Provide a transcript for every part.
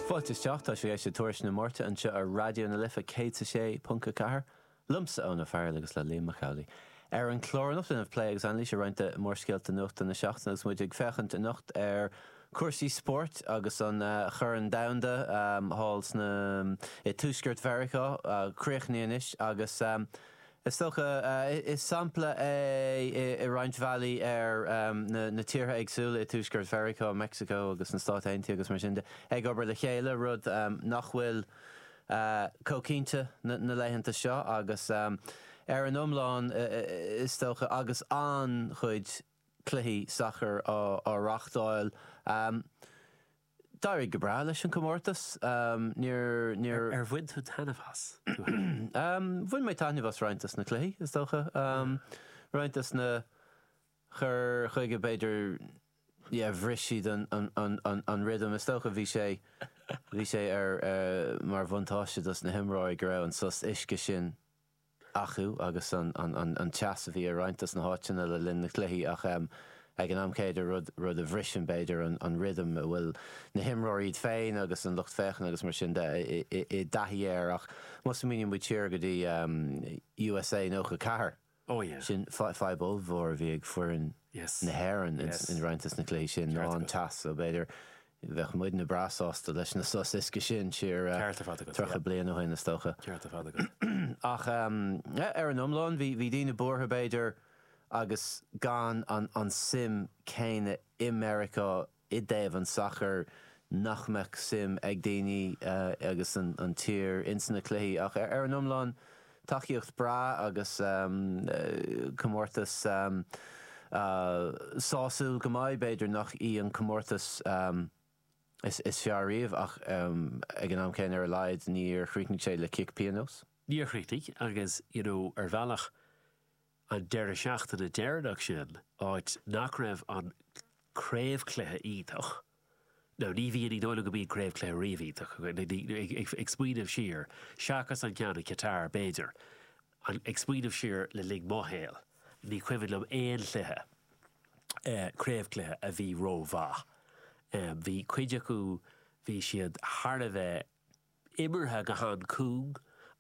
Fáilte isteach, tá sibh ag éisteacht le Tuairisc na Máirte anseo ar Raidió na Life 106.4, liomsa Eoin Farrell agus le Liam Mac Amhlaigh. Ar an chlár anocht déanfaimid plé agus anailís ar roinnt de mhórscéalta nuachta na seachtaine agus muid ag féachaint anocht ar cúrsaí spóirt agus an Corn Domhanda thall sna i Tuaisceart Mheiriceá a chríochnaíodh anois agus Is dócha, is sampla é i roinnt bhealaí ar na tíortha éagsúla i Tuaisceart Mheiriceá, Meicsiceo agus na Stáit Aontaithe agus mar sin de, ag obair le chéile, rud nach bhfuil chomh cinnte na laethanta seo agus ar an iomlán is dócha agus an-chuid cluichí sacair á reáchtáil. D'éirigh go breá leis an comórtas. Ar bhain tú taitneamh as? Bhain mé taitneamh as roinnt dos na cluichí, is dócha. Roinnt dos na cur chuige, b'fhéidir, yeah, bhris siad an rhythm. Is dócha bhí sé, bhí sé ar, mar bhuntáiste dos na himreoirí go raibh an sos uisce sin. acu agus an teas a bhí ar roinnt dos na háiteanna le linn na cluichí ach ag an am céanna rud a bhriseann b'fhéidir an rithim a bhfuil na himreoirí iad féin agus an lucht féachana agus mar sin de i dtaithí air ach má smaoiníonn muid siar go dtí USA 94 sin fadhb ollmhór a bhí ag foireann na hÉireann i roinnt dos na cluichí sin ná an teas so b'fhéidir Bheadh muidne breá sásta leis na sos uisce sin siar Ceart ar fad agat, yeah. 30 bliain ó shoin is dócha. Ceart ar fad agat. Ach ar an iomlán bhí bhí daoine buartha b'fhéidir agus gan an an suim céanna i Meiriceá i dtaobh an sacair nach mbeadh suim ag daoine agus an an tír ins na cluichí ach ar an iomlán Tacaíocht breá agus comórtas sásúil go maith. B'fhéidir nach í an comórtas is fearr riamh ach ag an am céanna ar a laghad níor chríochnaigh sé le cic pionóis. Níor chríochnaigh agus you know ar bhealach an deireadh seachtaine deireanach sin, áit nach raibh an craobhchluiche iontach, now ní bhíonn, ní dóigh liom go mbíonn craobhchluiche riamh iontach, ag smaoineamh siar, seachas an ceann i Qatar b'fhéidir, ag smaoineamh siar le linn mo shaol, ní cuimhin liom aon chluiche, craobhchluiche a bhí ró-mhaith. Bhí cuid acu, bhí siad thar a bheith. imeartha go han-chúng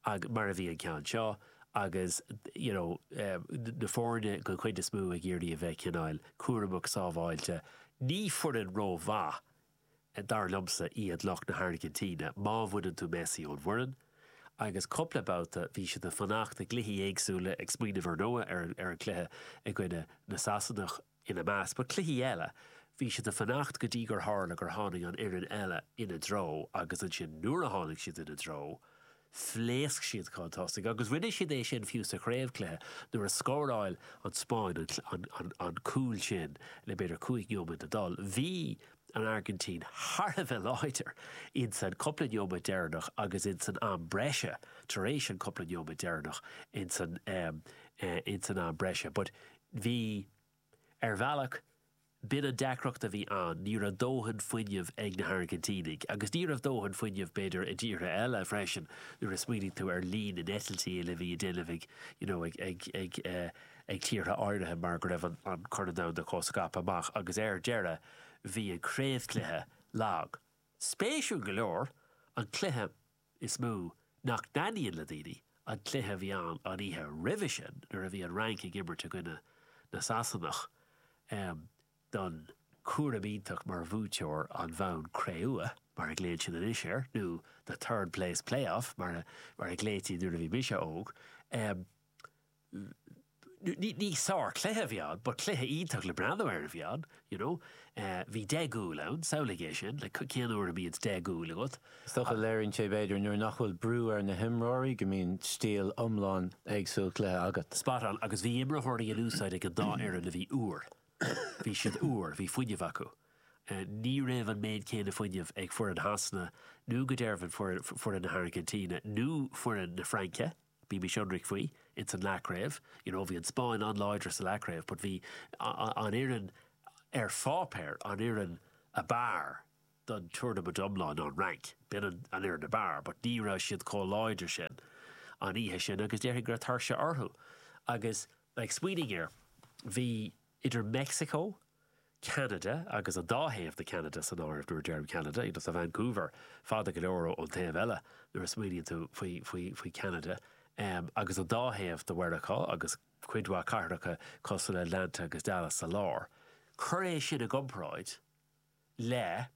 agus mar a bhí an ceann seo agus you know na foirne den chuid is mó ag iarraidh a bheith cineáil cúramach sábháilte. Ní foireann ró mhaith dar liomsa iad lucht na hAirgintíne má bhaineann tú Messi ón bhfoireann agus cúpla babhta bhí siad ag fanacht i gcluichí éagsúla ag smaoineamh ar ndóigh ar an cluiche i gcoinne na Sasanach ina measc. But cluichí eile, bhí siad ag fanacht go dtí gur tharla gur tháinig an fhoireann eile ina dtreo agus ansin nuair a tháinig siad ina dtreo, phléasc siad chun tosaigh agus rinne siad é sin fiú sa chraobhchluiche nuair a scóráil an Spáinn an cúl sin le b'fhéidir cúig neomat le dul. Bhí an Airgintín thar a bheith láidir insan cúpla neomat deireanach agus insan am breise tar éis an cúpla neomat deireanach insan am breise but, Bhí. Ar bhealach, b'in an deacracht a bhí ann, ní raibh dóthain fuinneamh ag na hAirgintínigh. Agus ní raibh dóthain fuinneamh, b'fhéidir, i dtíortha eile freisin, nuair a smaoinigh tú ar líon na n-eitiltí a bhí á ndéanamh ag, you know, ag, ag, ag, ag tíortha áirithe mar go raibh an Corn Domhanda chomh scaipthe amach. Agus ar deireadh, bhí an craobhchluiche lag. Spéisiúil go leor, an cluiche is mó nach dtaitníonn le daoine an cluiche a bhí ann an oíche roimhe sin nuair a bhí an Fhrainc ag imirt i gcoinne na Sasanach don chúram iontach mar bhuaiteoir an bhonn cré-umha, mar a ghlaonn siad anois air, nó the third place playoff mar a ghlaoití nuair a bhí mise óg. ní sár cluiche bhí ann, but cluiche iontach le breathnú air a bhí ann, you know. Bhí deich gcúl ann, samhlaigh é sin, cén uair a mbíonn deich gcúl agat. Is dócha léiríonn sé b'fhéidir nuair nach bhfuil brú ar na himreoirí go mbíonn stíl iomlán éagsúil cluiche agat. Spot on, agus bhí imreoirí in úsáid ag an dá fhoireann a bhí úr. Bhí siad úr, bhí fuinneamh acu. Ní raibh an méid céanna fuinneamh ag foireann Shasana nó go dearbhain foireann na hAirgintíne nó foireann na Fraince. Bímis ionraic faoi, ins an leathchraobh, you know, bhí an Spáinn an-láidir sa leathchraobh but bhí an fhoireann ar pháipéar, an fhoireann ab fhearr don tournament iomlán ná an Fhrainc. B'in an fhoireann ab fhearr but ní raibh siad chomh láidir sin an oíche sin agus déarfainn go raibh tuirse orthu agus like smaoinigh air, bhí, idir Meicsiceo, Ceanada agus an dá thaobh de Cheanada san áireamh nuair a deirim Ceanada, you know tá Vancouver fada go leor ón taobh eile nuair a smaoiníonn tú faoi Cheanada, agus an dá thaobh de Mheiriceá agus cuid mhaith cathracha cosúil le Atlanta agus Dallas sa lár. Cuir é sin i gcomparáid le,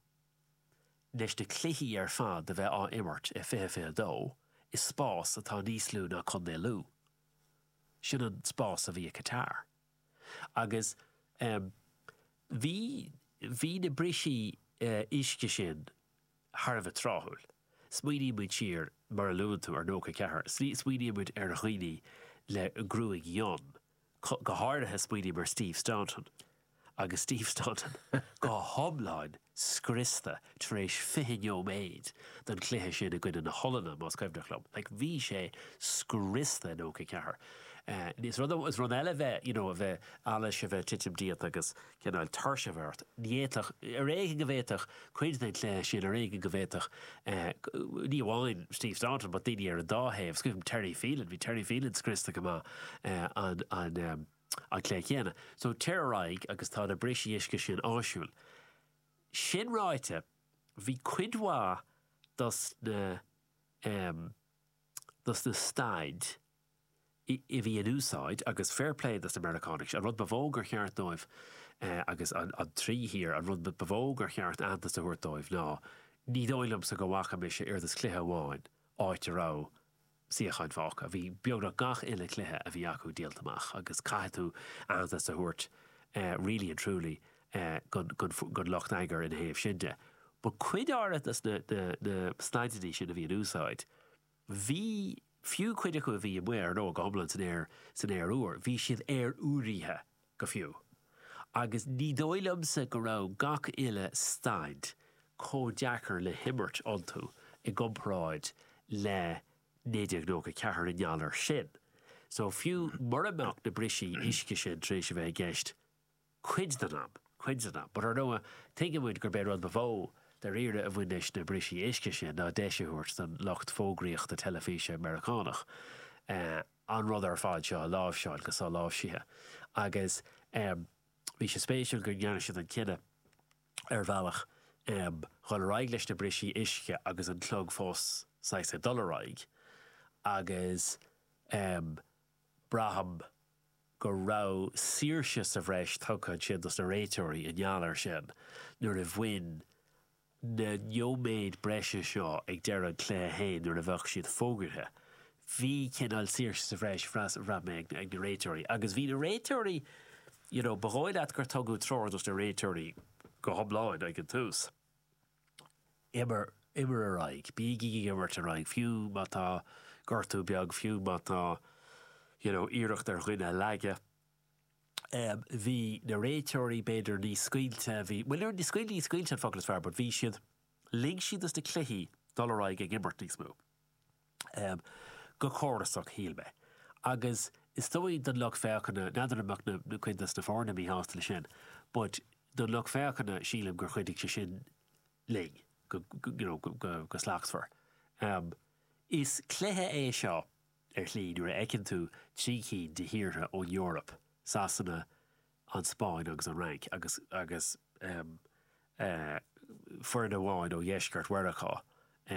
leis na cluichí ar fad a bheith á imirt i fiche fiche dó i spás atá níos lú ná Contae Lú. Sin an spás a bhí i Qatar. agus em bhí, bhí na brisí eh uisce sin thar a bheith tráthúil. Smaoiníonn muid siar, mar a luann tú, ar nócha a ceathair, smaoiníonn muid ar dhaoine le gruaig fhionn, go háirithe smaoiním ar Steve Staunton agus Steve Staunton go hiomlán scriosta tar éis 20 nóiméad den chluiche sin i gcoinne na hOllainne, más cuimhneach liom. Like bhí sé scriosta in 94. Eh, is rud eile a bheith, you know, a bheith allais, a bheith titim díot agus cineál tuirse a bheith ort. Ní fhéadfadh, ar éigean go bhféadfadh cuid den chluiche sin, ar éigean go bhféadfadh eh, ní amháin Steve Staunton but daoine ar an dá thaobh, is cuimhin liom Terry Phelan, bhí Terry Phelan scriosta go maith eh, an, an, eh, an lá céanna. So téir ar aghaidh agus tá na brisí uisce sin áisiúil. Sin ráite, bhí cuid mhaith dos na, em, dos na staid i, a bhí in úsáid agus fair play dos na Meiriceánaigh, an rud ba mhó gur cheart dóibh, eh, agus na, na trí thír, an rud ba mhó gur cheart aitheantas a thabhairt dóibh ná, ní dóigh liomsa go bhfaca mise oiread is cluiche amháin áit a raibh, suíocháin fágtha. Bhí beagnach gach uile cluiche a bhí acu díolta amach agus caithfidh tú aitheantas a thabhairt really and truly gon lucht eagair ina thaobh sin de. But cuid áirithe de na staideannaí sin a bhí in úsáid, bhí, fiú cuid acu a bhí amuigh ar ndóigh go hiomlán san aer úr, bhí siad aeroiriúnaithe go fiú, agus ní dóigh liomsa go raibh gach uile staid chomh deacair le himirt iontu i gcomparáid le 1994 i ngeall air sin. So, fiú mura mbeadh na brisí uisce sin tar éis a bheith i gceist cuid den am, cuid den am, but ar ndóigh tuigeann muid gurb é rud ba mhó dairíre a bhain leis na brisí uisce sin ná deis a thabhairt don lucht fógraíochta teilifíse Meiriceánach eh, an rud ar fad seo a láimhseáil go soláimhsithe agus bhí sé spéisiúil go ndearna siad an cinneadh ar bhealach dhul ar aghaidh leis na brisí uisce agus an clog fós saghas ag dul ar aghaidh agus braithim go raibh saoirse sa bhreis tugtha ansin dos na réiteoirí i ngeall air sin nuair a bhain na nóiméid breise seo ag deireadh an chluiche féin nuair a bheadh siad fógartha. Bhí cineál saoirse sa bhreis a bhraith mé ag na réiteoirí agus bhí na réiteoirí, you know, ba dhóigh leat gur tugadh treoir dos na réiteoirí go hiomlán ag an tús, imir, imir ar aghaidh, bígí ag imirt ar aghaidh, fiú má tá gortú beag, fiú má tá, you know, iarracht ar dhuine a leagadh. Bhí na réiteoirí b'fhéidir níos scaoilte, bhí, bhuel níor, scaoilte, ní scaoilte an focal is fearr but bhí siad, lig siad dos na cluichí dul ar aghaidh ag imirt níos mó. Go córasach shíl mé. Agus is dóigh don lucht féachana, n'fheadar an mbeadh na, cuid dos na foirne míshásta le sin but don lucht féachana sílim gur chuidigh sé sin linn go, you know, go slachtmhar. Is cluiche é seo Ar shlí, nuair a fheiceann tú trí cinn de thíortha ón Eoraip, Sasana, an Spáinn agus an Fhrainc, agus agus em eh foireann amháin ó dheisceart Mheiriceá,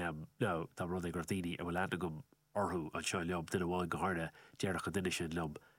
em now tá rud é go raibh daoine a bhfuil aithne agam orthu anseo liom, duine amháin go háirithe, déarfadh an duine sin liom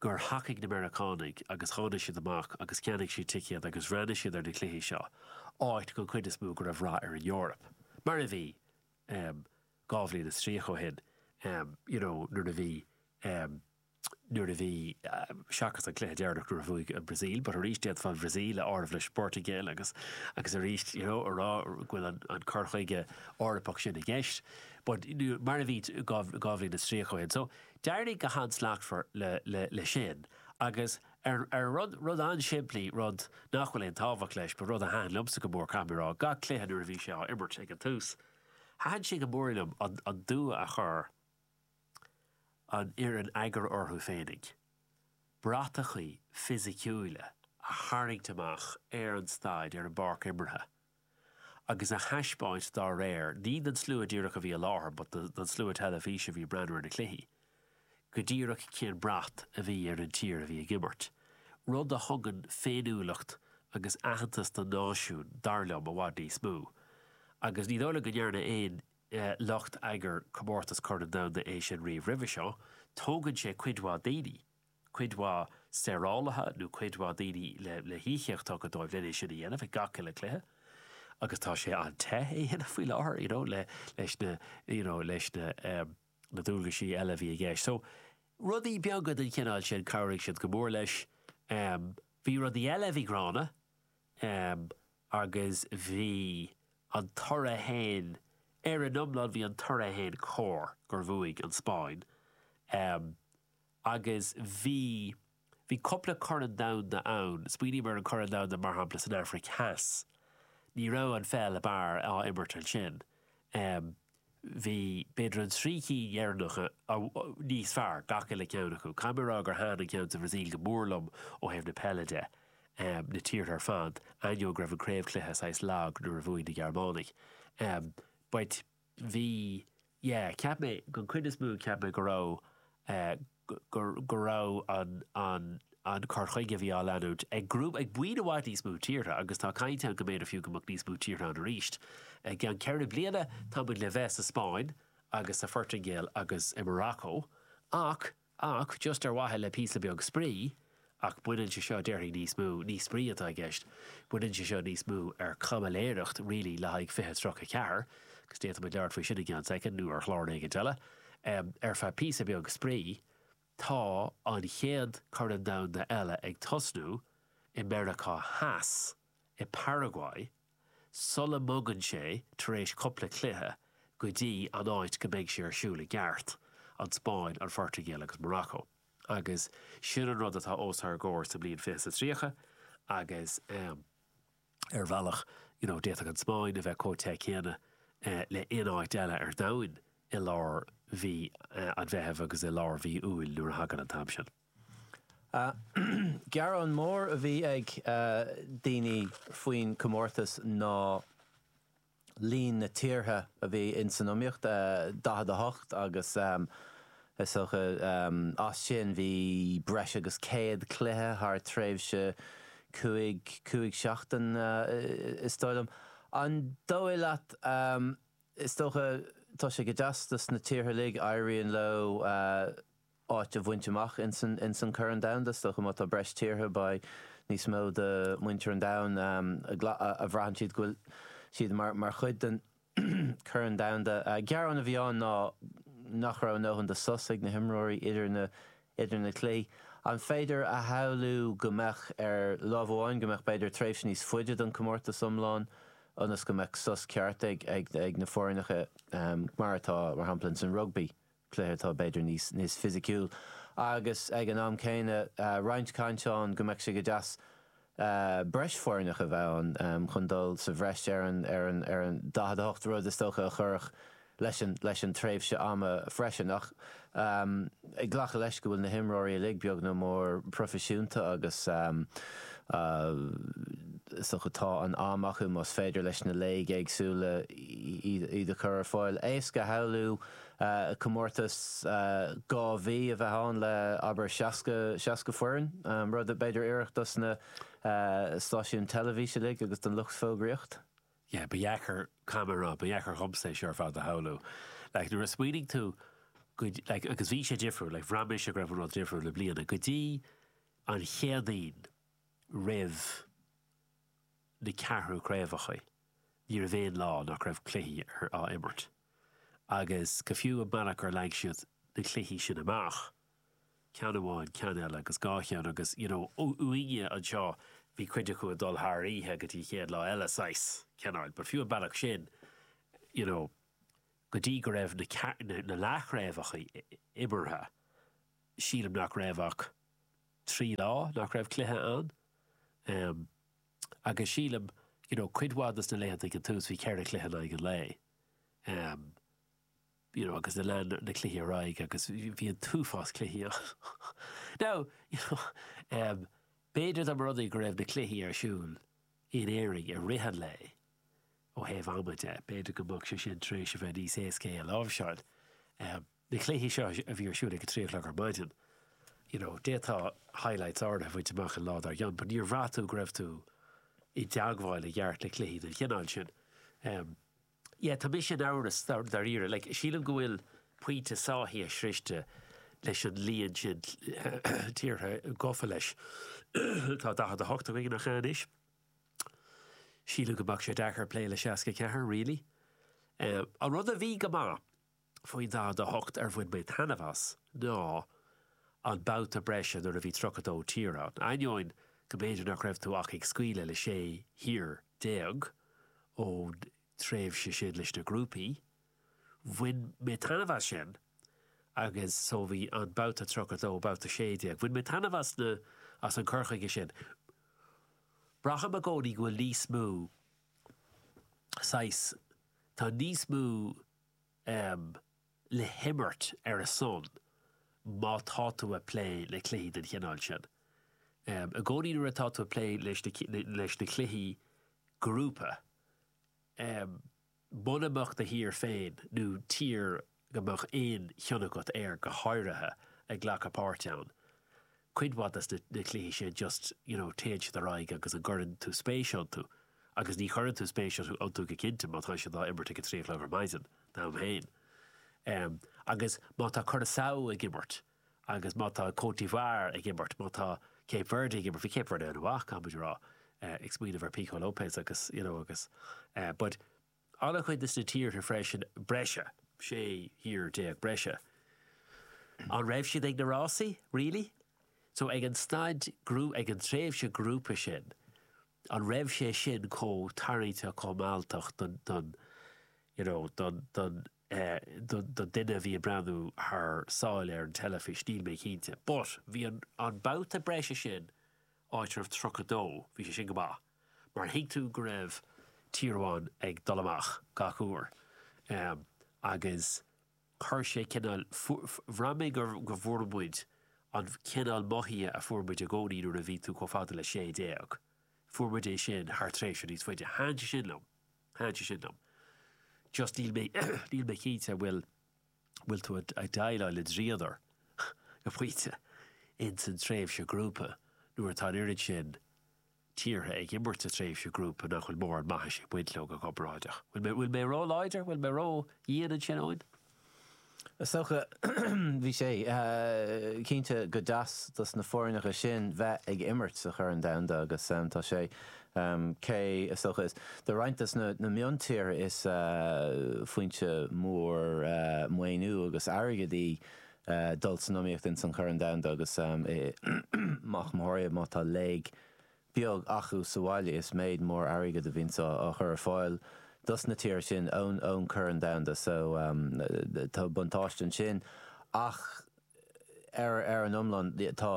gur thacaigh na Meiriceánaigh agus tháinig siad amach agus cheannaigh siad ticéad agus d'fhreastail siad ar na cluichí seo, áit gon chuid is mó go raibh rath ar an Eoraip. Mar a bhí, em, dhá bhliain is tríocha ó shin, em, you know, nuair a bhí, em, nuair a bhí, em, seachas an cluiche deireanach nuair a bhuaigh an Bhrasaíl, but arís d'fhéadfá an Bhrasaíl a áireamh leis an bPortaingéil agus, agus arís, you know, a rá go bhfuil an, an cur chuige Eorpach sin i gceist. But, mar a bhí, dhá, dhá bhliain is tríocha ó shin. So, D'éirigh go han-slachtmhar le, leis sin agus ar rud an-simplí, rud nach bhfuil aon tábhacht leis, ba rud a thaitin liomsa go mór, caithfidh mé a rá, gach cluiche nuair a bhí sé á imirt ag an tús. Thaitin sé go mór liom an dua a chuir an fhoireann eagair orthu féinig, bratachaí fisiciúla a tharraingt amach ar an staid, ar an bpáirc imeartha. agus a thaispeáint dá réir, ní don slua díreach a bhí i láthair but don slua teilifíse a bhí ag breathnú ar na cluichí, go díreach cén brat a bhí ar an tír a bhí ag imirt. Rud a thugann féiniúlacht agus aitheantas don náisiún, dar liom, i bhfad níos mó. Agus ní dóigh liom go ndearna aon lucht eagair comórtas Corn Domhanda é sin riamh roimhe seo. Tógann sé cuid mhaith daoine. cuid mhaith saorálaithe nó cuid mhaith daoine le híocaíochtaí dóibh len é sin a dhéanamh ag gach uile cluiche agus tá sé ag teacht é a dhéanamh faoi láthair you know leis na you know leis na na dualgaisí eile a bhí i gceist so rudaí beaga den chineál sin chabhraigh siad go mór leis um bhí rudaí eile a bhí gránna um agus bhí an toradh fhéin ar an iomlán bhí an toradh fhéin cóir gur bhuaigh an Spáinn um Agus bhí. Bhí cupla corn domhanda ann. Smaoiním ar an gcorn domhanda mar shampla san Aifric Theas. Ní raibh an pheil ab fhearr á imirt ansin. Bhí b'fhéidir an trí cinn dheireanacha níos fearr, gach uile ceann acu. Caithfidh mé rá gur thaitin an ceann sa Bhrasaíl go mór liom ó thaobh na peile de, na tíortha ar fad, ainneoin go raibh an craobh cluiche saghas lag nuair a bhuaigh na Gearmánaigh. But. bhí, yeah, cheap mé, gon chuid is mó cheap mé go raibh, go raibh an, an, an cur chuige a bhí á leanúint ag grúpa, ag buíon i bhfad níos mó tíortha agus tá caint ann go mb'fhéidir fiú go mbeadh níos mó tíortha ann arís i gceann ceithre bliana, tá muid le bheith sa Spáinn agus sa Phortaingéil agus i Maracó. Ach just ar mhaithe le píosa beag spraoi, ach baineann sé seo, déarfainn, níos mó, ní spraoi atá i gceist, baineann sé seo níos mó ar caimiléireacht really le haghaidh fiche tríocha ceathair, agus d'fhéadfaimid labhairt faoi sin i gceann soicind nó ar chlár éigin eile, ar feadh píosa beag spraoi, tá an chéad Corn Domhanda eile ag tosnú i Meiriceá Theas, i bParaguay. sula mbogann sé, tar éis cupla cluiche, go dtí an áit go mbeidh sé ar siúl i gceart, an Spáinn, an Phortaingéil agus Morocco. Agus sin an rud atá os ár gcomhair sa mbliain fiche is a tríocha agus ar bhealach you know d'fhéadfadh an Spáinn a bheith comh te céanna le aon áit eile ar domhain i lár mhí an Mheithimh agus i lár mhí Iúil nuair a thagann an t-am sin. Gearán mór a bhí ag daoine faoin comórtas ná líon na tíortha a bhí ins an iomaíocht, 48, agus is dócha as sin bhí breis agus 100 cluiche thar tréimhse cúig, cúig seachtain is dóigh liom. An dóigh leat, is dócha tá sé go deas dos na tíortha uilig, éiríonn leo, áit a bhaint amach ins an Corn Domhanda. Is dócha má tá breis tíortha, beidh níos mó de muintir an domhain a bhraitheann siad go bhfuil siad mar chuid den Chorn Domhanda. Gearán a bhí ann ná nach raibh a ndóthain de sos ag na himreoirí idir na cluichí. An féidir a shamhlú go mbeadh ar láimh amháin go mbeadh b'fhéidir tréimhse níos faide don comórtas iomlán ionas go mbeadh sos ceart ag na foirneacha mar atá mar shampla ins an rugbaí. cluiche atá b'fhéidir níos fisiciúil agus ag an am céanna roinnt caint ann go mbeadh sé go deas breis foirneach a bheith ann chun dul sa bhreis ar an 48 rud is dócha a chuirfeadh leis an tréimhse ama freisin. Ach ag glacadh leis go bhfuil na himreoirí uilig beag nó mór proifisiúnta agus is dócha tá an am acu más féidir leis na léig éagsúla iad a chur ar fáil. Éasca a shamhlú comórtas dhá mhí a bheith ann le, abair, 60, seasca foireann, rud a, b'fhéidir, oirfeadh dos na stáisiúin teilifís uilig agus don lucht fógraíocht. yeah, ba dheacair, caithfidh mé a rá, ba dheacair dhomsa é seo ar fad a shamhlú. Like, nuair a smaoinigh tú go, like, agus bhí sé difriúil, like, bhraith mise go raibh an rud difriúil i mbliana, go dtí an Chéadaoin roimh na ceathrú craobhacha, ní raibh aon lá nach raibh cluichí ar, á imirt. agus go fiú an bealach ar leag siad na cluichí sin amach, ceann amháin, ceann eile agus dhá cheann agus you know uaireanta bhí cuid acu ag dul thar oíche go dtí an chéad lá eile saghas cineáil but fiú an bealach sin you know go dtí go raibh na na, na leathchraobhacha imeartha sílim nach raibh ach trí lá nach raibh cluiche ann. Um, Agus sílim, you know, cuid mhaith des na laethanta ag an tús, bhí ceithre chluiche in aghaidh an lae, em, you know, agus na lean na cluichí ar aghaidh agus bhí an t-uafás cluichí ann. Now, you know, em, b'fhéidir dá mba rud é go raibh na cluichí ar siúl in Éirinn i rith an lae ó thaobh ama de, b'fhéidir go mbeadh sé sin tar éis a bheith níos éasca é a láimhseáil. Em, Na cluichí seo a bhí ar siúl ag a trí a chlog ar maidin, you know, d'fhéadfá highlights áirithe a bhaint amach an lá dár gcionn, but níor bhraith tú go raibh tú i dteagmháil i gceart le cluichí den chineál sin. Em, yeah, tá mise in amhras dáiríre, like, sílim go bhfuil pointe sáithithe sroichte leis an líon sin tíortha gofa leis. Tá 48 againn cheana anois. Sílim go mbeadh sé deacair plé le 64, really. Em, an rud a bhí go maith, Faoin 48 ar bhain mé taitneamh as ná an babhta breise nuair a bhí 32 tír ann. Ainneoin go mb'fhéidir nach raibh tú ach ag scaoileadh le 16 thír ón tréimhse sin leis na grúpaí, bhain mé taitneamh as sin agus so bhí an babhta 32, babhta 16, bhain mé taitneamh as na, as an cur chuige sin. Braithim i gcónaí go bhfuil níos mó saghas, tá níos mó. em. le himirt ar a son má tá tú a' plé le cluichí den chineál sin. Em. i gcónaí nuair atá tú a' plé leis na, leis na cluichí grúpa, em. muna mbeadh do thír féin nó tír go mbeadh aon chion agat air go háirithe, ag glacadh páirt ann, Cuid mhaith des na cluichí sin just you know téann siad ar aghaidh agus cuireann tú spéis iontu agus ní chuireann tú spéis iontu go cinnte má tá siad á imirt ag a trí a chlog ar maidin d'am féin em agus má tá Curaçao ag imirt agus má tá Côte d'Ivoire ag imirt má tá Cape Verde ag imirt bhí Cape Verde ana mhaith caithfimid a rá eh ag smaoineamh ar Pico Lopes agus you know agus eh but An-chuid des na tíortha freisin breise, 16 thír breise. An raibh siad ag na rásaí? Really? So ag an staid, ag an tréimhse grúpa sin, an raibh sé sin chomh tarraingteach, chomh mealltach don, don, you know, don, don, eh, don, don duine a bhí ag breathnú thar sáile ar an teilifís? Níl mé cinnte. But bhí an, an babhta breise sin, áit a raibh 32, bhí sé sin go maith. mar thuig tú go raibh tír amháin ag dul amach gach uair agus chuir sé cineál, bhraith mé go bhfuair muid an cineál mothaithe a fuair muid i gcónaí nuair a bhí tú chomh fada le sé déag, fuair muid é sin thar tréimhse níos faide. Thaitin sé sin liom, thaitin sé sin liom. Just níl mé, níl mé cinnte an bhfuil, an bhfuil tú ag déileáil le dríodar go pointe in san tréimhse grúpa nuair atá an oiread sin, tíortha ag imirt sa tréimhse grúpa nach bhfuil mórán maithis ag baint leo go comparáideach. Bhfuil mé, bhfuil mé ró láidir? Bhfuil mé ró dhian ansin, Eoin? Is dócha, bhí sé cinnte go deas dos na foirneacha sin bheith ag imirt sa Chorn Domhanda agus tá sé, cé, is dócha, is do roinnt dos na miontíortha is foinse mór maoiniú agus airgead í ag dul san iomaíocht ins an Chorn Domhanda agus go mór mhór má tá léig beag achu sa bhaile is méid mór airgead a bhíonns á chur ar fáil dos na tíre sin ón Chorn Domhanda so tá buntáiste ansin ach ar an iomlán tá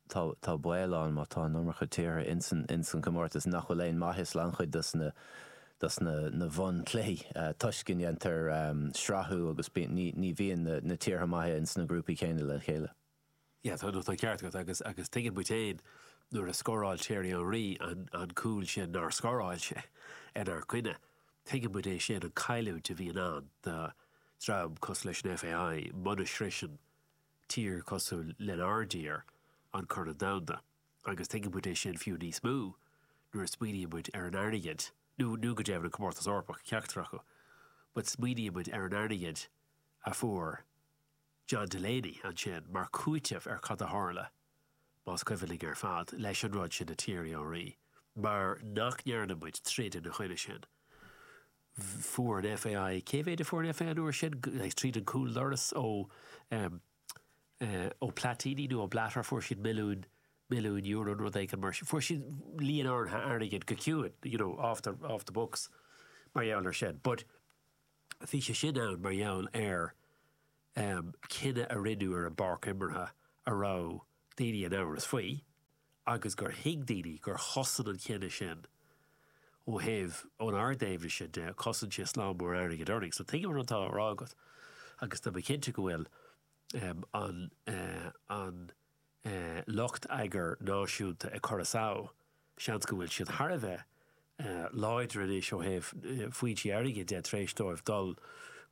tá baol ann má tá an iomarca tíortha ins an gcomórtas nach bhfuil aon maitheas le an-chuid dos na bhun cluichí toisc go ndéantar srathú agus ní bhíonn na tíortha maithe ins na grúpaí céanna le chéile. Yeah, tá an ceart agat agus agus tuigeann muid féin nuair a scóráil Thierry Henry an an cúl sin nár scóráil sé inár gcoinne. Tuigeann muid é sin an cailliúint a bhíonn ann do dream cosúil leis an FAI muna sroiseann tír cosúil lenár dtír, an Corn Domhanda, agus tuigeann muid é sin fiú níos mó nuair a smaoiníonn muid ar an airgead, nó nó go deimhin an Comórtas Eorpach, ceachtar acu, but smaoiníonn muid ar an airgead a fuair John Delaney ansin mar cúiteamh ar cad a tharla, más cuimhin linn ar fad, leis an rud sin le Thierry Henry, mar nach ndearna muid troid ina choinne sin. Fuair an FAI, cé mhéid a fuair an FAI an uair sin? Like, tríd an cúldoras ó, um, uh, ó Platini nó ó Blatter, fuair siad milliúin, milliúin euro nó rud éigin mar sin. Fuair siad líon áirithe airgid go ciúin, you know, off the, off the books, mar gheall ar sin. But bhí sé sin ann mar gheall ar um, cinneadh a rinneadh ar an bpáirc imeartha a raibh daoine in amhras faoi. agus gur thuig daoine gur chosain an cinneadh sin ó thaobh, ón ardeimhneas sin de, cosain sé slám mór airgid orainn. So tuigim rud atá á rá agat agus tá mé cinnte go bhfuil an an lucht sacair náisiúnta i Curaçao, seans go bhfuil siad thar a bheith láidir anois ó thaobh foinsí airgid de tar éis dóibh dul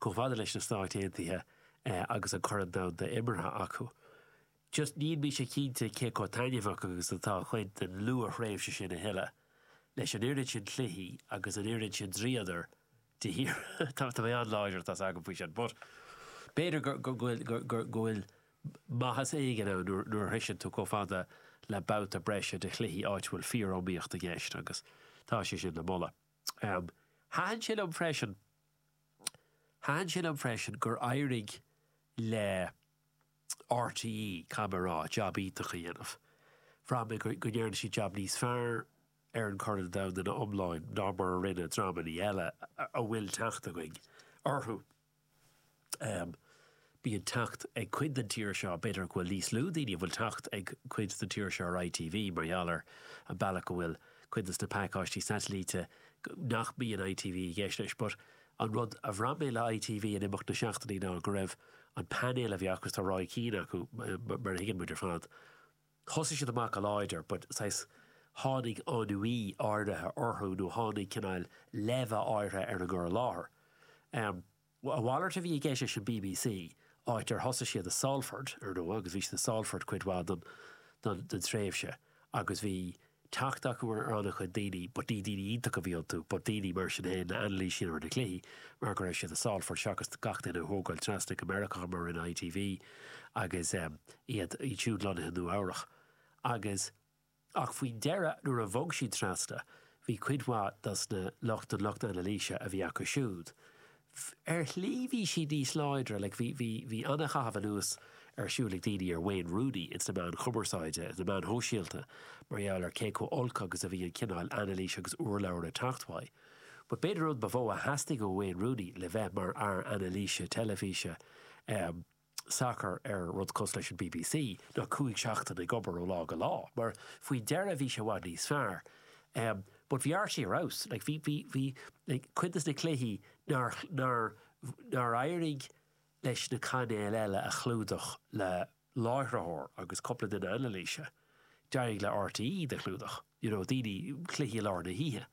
chomh fada leis na Stáit Aontaithe agus an Corn Domhanda imeartha acu. Just níl mise cinnte cé chomh taitneamhach agus atá an chuid den luath-thréimhse sin a thuilleadh, leis an oiread sin cluichí agus an oiread sin dríodar de shíor. Tá mé an-láidir, atá 's agam, faoi sin, but b'fhéidir go bhfuil maitheas éigin ann nuair a shroiseann tú chomh fada le babhta breise de chluichí áit a bhfuil fíor-iomaíocht i gceist agus tá sé sin le moladh. Thaithin sé liom freisin, thaithin sé liom freisin gur éirigh le. RTÉ, cé go raibh jab iontach á dhéanamh. Bhraith mé go ndearna siad jab níos fearr ar an Chorn Domhanda iomláin ná mar a rinne dreamanna eile a bhfuil teacht againn orthu. Bíonn teacht ag cuid den tír seo, b'fhéidir go bhfuil níos lú daoine a bhfuil teacht ag cuid den tír seo ar ITV mar gheall ar an bealach go bhfuil cuid de na pacáistí satailíte nach mbíonn ITV i gceist leis but An rud a bhraith mé le ITV in imeacht na seachtainí ná go raibh an painéal a bhí acu agus tá Roy Keane acu mar a thuigeann muid ar fad, thosaigh siad amach go láidir but saghas tháinig ennui áirithe orthu nó tháinig cineál leimhe áirithe ar an gcur i láthair. A mhalairt a bhí i gceist leis an bbc, áit ar thosaigh siad i Salford, ar ndóigh, agus bhí siad i Salford cuid mhaith den tréimhse agus bhí, teacht acu ar an-chuid daoine but ní daoine iontacha a bhí iontu but daoine mar sin fhéin le hanailísiú ar na cluichí mar go raibh siad i Salford seachas gach duine a thógáil trasna go Meiriceá mar a rinne ITV agus em iad siúd lonnaithe i Nua Eabhrach agus ach faoin deireadh nuair a bhog siad trasna bhí cuid mhaith dos na lucht an lucht anailíse a bhí acu siúd Ar shlí bhí siad níos láidre, like bhí, bhí, bhí an-chaitheamh anuas ar siúl ag daoine ar Wayne Rooney ins na meáin cumarsáide, ins na meáin shóisialta mar gheall ar cé chomh olc agus a bhí an cineál anailíse agus urlabhra ag teacht uaidh. But b'fhéidir an rud ba mhó a theastaigh ó Wayne Rooney le bheith mar fhear anailíse teilifíse, eh, sacar ar rud cosúil leis an bbc ná cúig seachtaine ag obair ó lá go lá mar faoi dheireadh bhí sé i bhfad níos fearr em but bhí RTÉ ar fheabhas like bhí bhí bhí like cuid des na cluichí nár nár nár éirigh leis na cainéil eile a chlúdach le láithreoir agus cúpla duine anailíse d'éirigh le RTÉ iad a chlúdach you know daoine cluichí i lár na hoíche.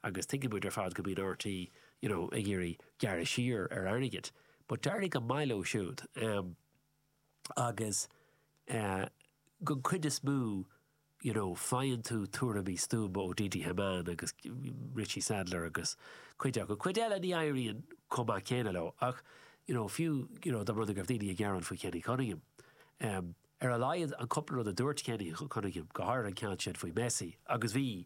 agus tuigeann muid ar fad go mbíonn RTÉ you know ag iarraidh gearradh siar ar airgead but d'éirigh go maith leo siúd ehm agus eh don chuid is mó you know faigheann tú tuairimí stuama ó Didi Hamann agus Richie Sadlier agus cuid acu. Cuid eile ní éiríonn chomh maith céanna leo ach you know fiú you know dá mba rud é go raibh daoine ag gearán faoi Kenny Cunningham ehm Ar a laghad an cúpla rud a dúirt Kenny Cunningham, go háirithe an ceann sin faoi Messi, agus bhí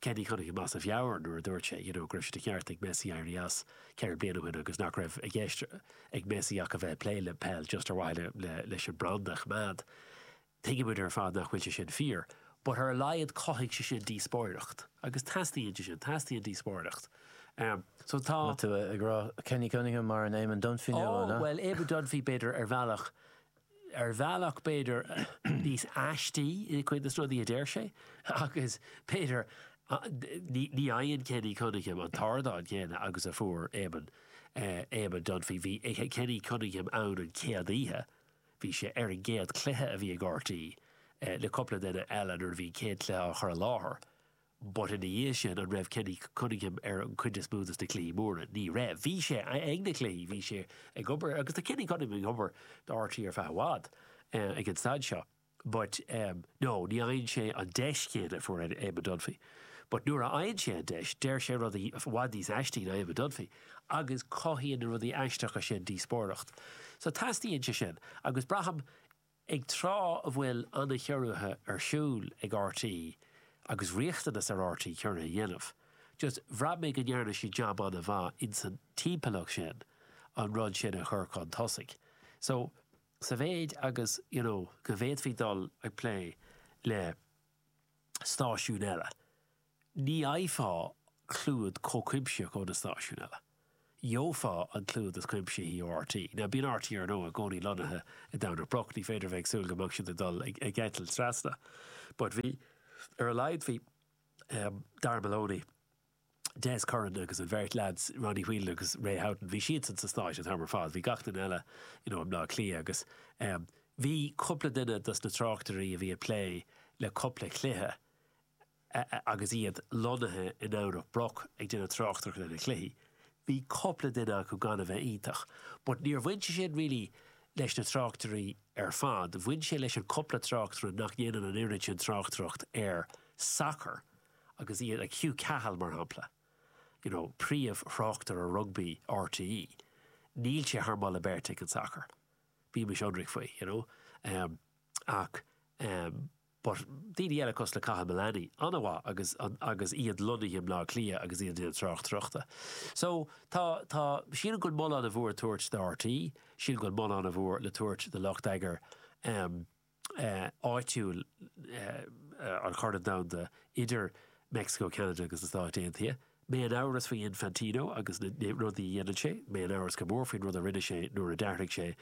Kenny Cunningham as a mheabhair nuair a dúirt sé, you know, go raibh sé de cheart ag Messi éirí as ceithre bliana ó shin agus nach raibh i gceist ag Messi ach a bheith ag plé le peil just ar mhaithe leis an branda a choimeád. Tuigeann muid ar fad nach bhfuil sé sin fíor but ar a laghad chothaigh sé sin díospóireacht agus teastaíonn sé sin, teastaíonn díospóireacht. So tá. An bhfuil tú ag rá Kenny Cunningham mar an Eamon Dunphy nua, an ea? Oh, bhuel, Eamon Dunphy b'fhéidir ar bhealach, Ar bhealach b'fhéidir níos aistí i cuid de na rudaí a deir sé agus b'fhéidir ní fhaigheann Kenny Cunningham an t-ardán céanna agus a fuair Éamonn, Éamonn Dunphy. Bhí Kenny Cunningham ann an chéad oíche, bhí sé ar an gcéad chluiche a bhí ag rte le cúpla duine eile nuair a bhí an chéad chluiche á chur i láthair. But ina dhiaidh sin, an raibh Kenny Cunningham ar an cuid is mó dos na cluichí móra? Ní raibh. Bhí sé ag na cluichí, bhí sé ag obair agus tá Kenny Cunningham ag obair do RTÉ ar feadh i bhfad ag an staid seo. But no, ní fhaigheann sé an deis chéanna a fuair Eamon Dunphy. But nuair a fhaigheann sé an deis, deir sé rudaí i bhfad níos aistí ná Eamon Dunphy agus cothaíonn na rudaí aisteacha sin díospóireacht. So teastaíonn sé sin agus braithim, Ag tráth a bhfuil an-chiorruithe ar siúl ag RTÉ agus riachtanas ar RTÉ ciorruithe a dhéanamh, just bhraith mé go ndearna siad jab an-mhaith insan timpeallacht sin an rud sin a chur chun tosaigh. So, sa mhéid agus, you know, go bhféadfaí dul ag plé le stáisiúin eile, Ní fhaigheofá clúid chomh cuimsitheach ó na stáisiúin eile. Gheofá an clúid is cuimsithí ó RT. Now bíonn RT ar ndóigh i gcónaí lonnaithe i nDomhnach Broc, ní féidir a bheith ag súil go mbeadh siad ag dul ag eitilt trasna. But bhí, ar a laghad bhí Darragh Maloney, Des Curran agus an bheirt leads, Ronnie Whelan agus Ray Houghton, bhí siadsan sna Stáit an t-am ar fad. Bhí gach duine eile you know i mBleá Cliath agus bhí cúpla duine dos na tráchtairí a bhí ag plé le cúpla cluiche agus iad lonnaithe i nDomhnach Broc ag déanamh tráchtaireachta ar na cluichí, bhí cupla duine acu gan a bheith iontach, but níor bhain sé sin really leis na tráchtairí ar fad, bhain sé leis an cupla tráchtaire nach ndéanann an oiread sin tráchtaireacht ar sacar agus iad, like Hugh Cahill mar shampla, you know, príomhthráchtaire rugbaí rte, níl sé thar moladh beirte ag an sacar, bímis ionraic faoi, you know, ach, But daoine eile cosúil le Cathal Mullaney an-mhaith agus agus iad lonnaithe i mBleá Cliath agus iad ag déanamh tráchtaireachta. So tá tá sílim go bhfuil moladh an-mhór le tabhairt do RT, sílim go bhfuil moladh an-mhór le tabhairt do lucht eagair em eh áitiúil eh an Chorn Domhanda idir Mexico, Canada agus na Stáit Aontaithe. Mé in amhras faoi Infantino agus na na rudaí a dhéanann sé, mé in amhras go mór faoin rud a rinne sé nuair a d'athraigh sé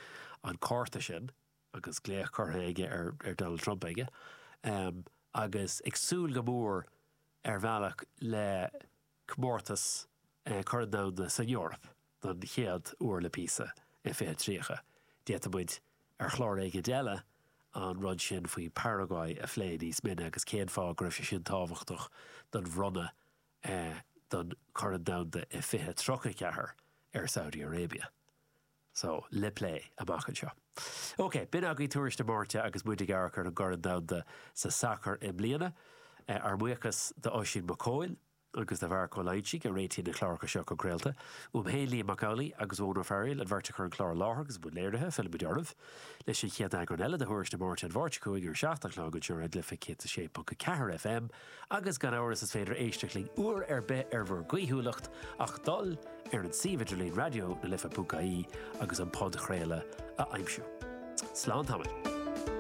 an cárta sin. agus glaoch curtha aige ar Donald Trump aige, agus ag súil go mór ar bhealach le comórtas Chorn Domhanda san Eoraip don chéad uair le píosa i 2030. D'fhéadfadh muid ar chlár éigin eile an rud sin faoi Paraguay a phlé níos mine agus cén fáth go raibh sé sin tábhachtach don bhronnadh don Chorn Domhanda i 2034 ar Saudi Arabia. So, le plé amach anseo. OK, b'in agaibh Tuairisc na Máirte agus muid ag amharc ar an gCorn Domhanda sa sacar i mbliana. Ár mbuíochas d'Oisín Mac Cóil agus do Mharc Ó Loingsigh a réitíonn na cláracha seo chun craolta. Uaim féin, Liam Mac Amhlaigh agus Eoghan Ó Fearghaíl, an bheirt a chuir an clár i láthair agus muid ina léiritheoirí, fillfimid oraibh leis an chéad eagrán eile de Thuairisc na Máirte an Mháirt chugainn ar 7 a chlog anseo ar Raidió na Life 106.4 FM. Agus gan amhras is féidir éisteacht linn uair ar bith ar bhur gcaoithiúlacht ach dul ar an suíomh idirlín Raidió na Life ponc ie agus an podchraoladh a aimsiú. Slán tamaill.